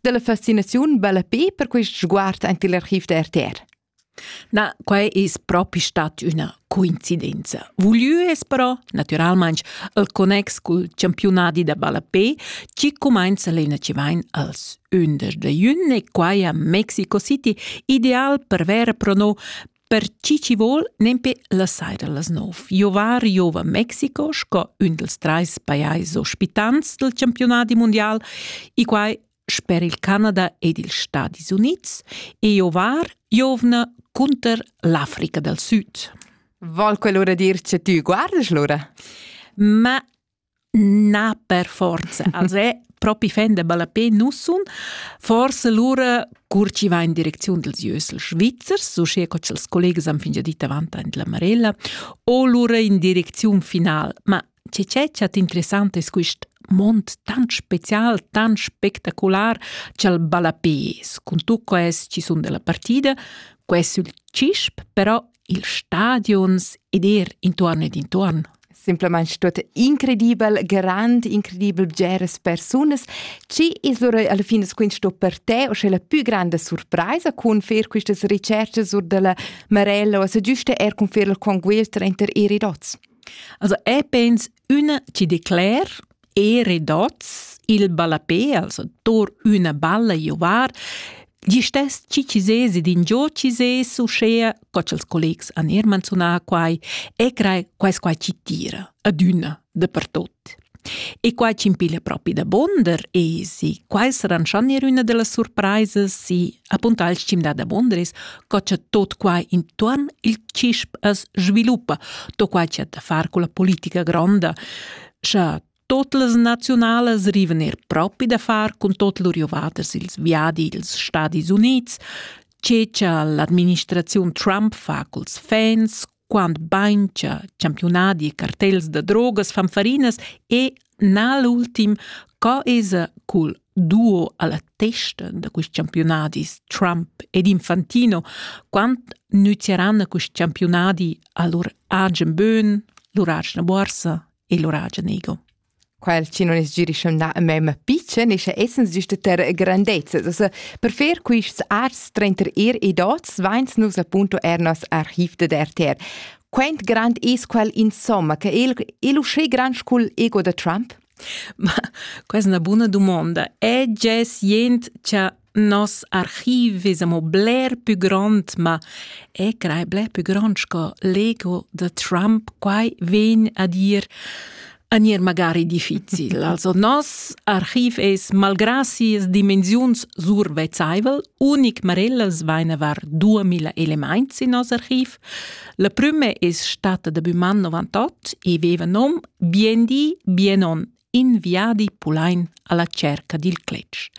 della fascinaziun bella pe per quist sguard aint il archiv da RTR. Na, quai es propi stat üna coincidenza. Vulieu es però, naturalmaing, il connex cul championadi da ballapé chi cumainza lena chi vain als 11 de jun e quai a Mexico City, ideal per ver pro no Per chi chi vol nempe la saira las nov. Jovar giova Mexico sco ün dels trais pajais ospitants del campionati mundial e quai sper il Canada ed ils Stadis Units e jovar giovna cunter l'Africa del Süd. Vol quell'ora dir che tü guardas l'ora? Ma Na per forza. Els è propi fendebel a pe nu sun. Forse lura cur chi va in direcziun dels Jösel Schwitzers, uschè co ch'els collegas han fingià dit avant aint la Marella, o lura in direcziun final. Ma che c'è chat interessant es quist mond tant special, tant spectacular cha'l balla pes. Cun tucco es chi sun della partida, quest sul CISP, però ils stadions ed er intuorn ed intuorn. Simplamain tuot incredibel, grand, incredibel bgeras persunas. Ci es lura alla fin es questo per te o sche la più grande surpresa con fer quistas ricerches sur della Marella o se giuste er con fer la conquista inter i ridots? Also, ich bin Ün chi decler e redots il ballapè, also tor üna balla giovar, gli stess chi chi sez ed ingio chi sez uschea, co cha'ls collegs han eir manzunà quai, e crei quais qua chi tira adüna dapertot. E quai chi'm piglia propi da bonder es, quai saran schon eir üna da las surpraisas, si Apunta al stim da Bondris, co cha tot quai intuorn il CISP as sviluppa, to quai cha ta far culla politica gronda, scha tot las naziunalas rivan er propi da far cun tot lur jovaders ils viadi ils Stadis Units, ce cha l'administraziun Trump fa culs fans, quant bain cha champiunadi e cartels da drogas fan farinas e na l'ultim co esa cul duo alla testa da quist campiunadis Trump ed Infantino quant nüzeranna quist campiunadi a lur agen bön, lur agena borsa e lur agen ego. quel chi non es girischamnà a me ma pitschen ischa essens güsta ter grandezza. Also per fer quists ars trenter ir e dots vains nus appunto er nos archiv dad RTR. Quant grand es quel insomma che il, il uschè grand scul ego da Trump? Ma questa è una buona domanda. È già sient che Nos archiv ves amo bler pü grond, ma e crei bler pü grond sco l'ego da Trump. Quai vegn a dir a gnir magari difficil. Also nos archiv es malgrà sias dimensiuns survezzaivel, unic marellas vaina var 2000 elemaints in nos archiv. La prüma es stata da bun man 98 e veva nom Bien di, bien on in viadi pulein alla cerca dil cletg.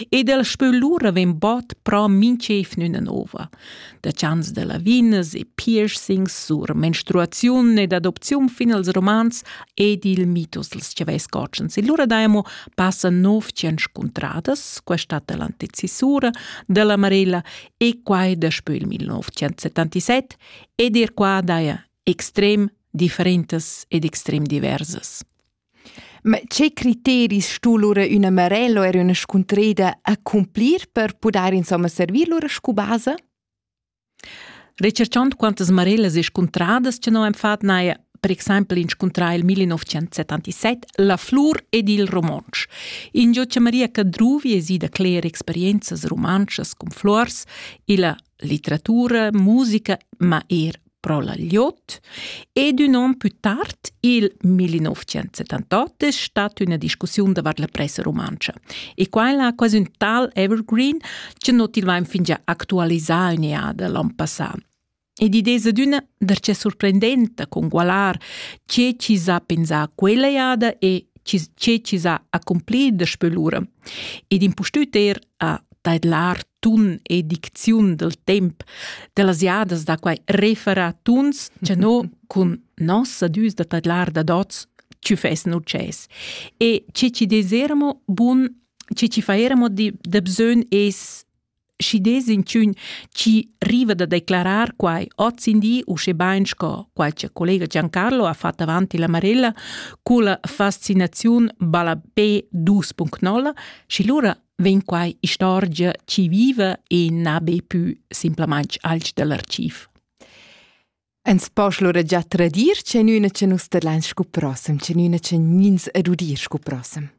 Ed el spö lura ven bod pro minchef nüna nova, da chans da lavinas e piercings sur menstruaziun ed adopziun fin als romans ed il mitos dels chavais cotschens. E lura daemo passa nov tschench contradas, questa l'antecisura della Marella e quai daspö il 1977 ed er qua daia extrem differentes ed extrem diversas. Ma che criteris stu lura üna Marello eir üna scuntreda accumplir per pudair insomma servir lura scu basa? Recharchond quantas Marellas e scuntradas cha no am fat n'haja per exaimpel inscuntrà il 1977 La flur ed il romontsch, ingio cha Maria Cadruvi es ida cler experienzas rumantschas cun fluors illa litteratura, musica, ma eir pro la gliot ed ün on pü tard, il 1978, es stat üna discussiun davart la pressa rumantscha. E quella ha quasi ün tal evergreen chi non til vain fingià actualisà ün eada l'an passà. Ed id es adüna darchè surprendenta congualar che chi s'ha pensà quella eada e che chi s'ha accompli daspö lura. Ed impustüt eir a tadlar tun e dicziun del temp dellas jadas da quai referatuns cha no cun nossa düs da tadlar da dots ci fessen ucces e ce ci desermo bun ce ci faermo di de bsögn es schi des inchün ci riva da declarar quai oz in di usche bain sco qualche collega Giancarlo ha fatto avanti la Marella culla fascinaziun Balapé 2.0 Schi lura vegn quai istorgia chi viva e na be pü simplamaing alch da l'archiv. Ens posch lura già tradir chenüna che nus tadlain scu prossem, chenüna che nins ed udir scu prossem.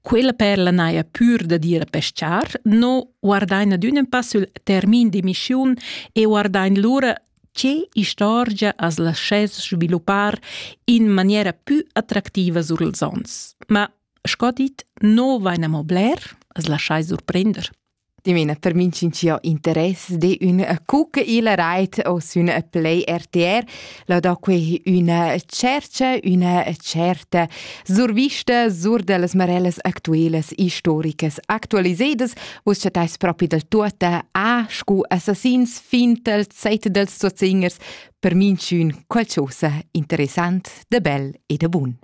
Quella perla n'haja pür da dir a peschar, no guardain ad ün pass sül termin d'emissiun e guardain lura che istorgia as laschess sviluppar in maniera pü attractiva sur ils ons. Ma Sco dit, no vain amo bler, as laschai surprender. Dimena per minch'in chi ho interess de ün cucca il rait o sün Play RTR, lo do que üna cercia, üna certa survista sur da las marellas actuelas historicas actualisedas. Vus chattais propi del tuota a scu assassins, fintel, zetedels, soziingers, per minch'ün qualchosa interessant, de bel e de bun.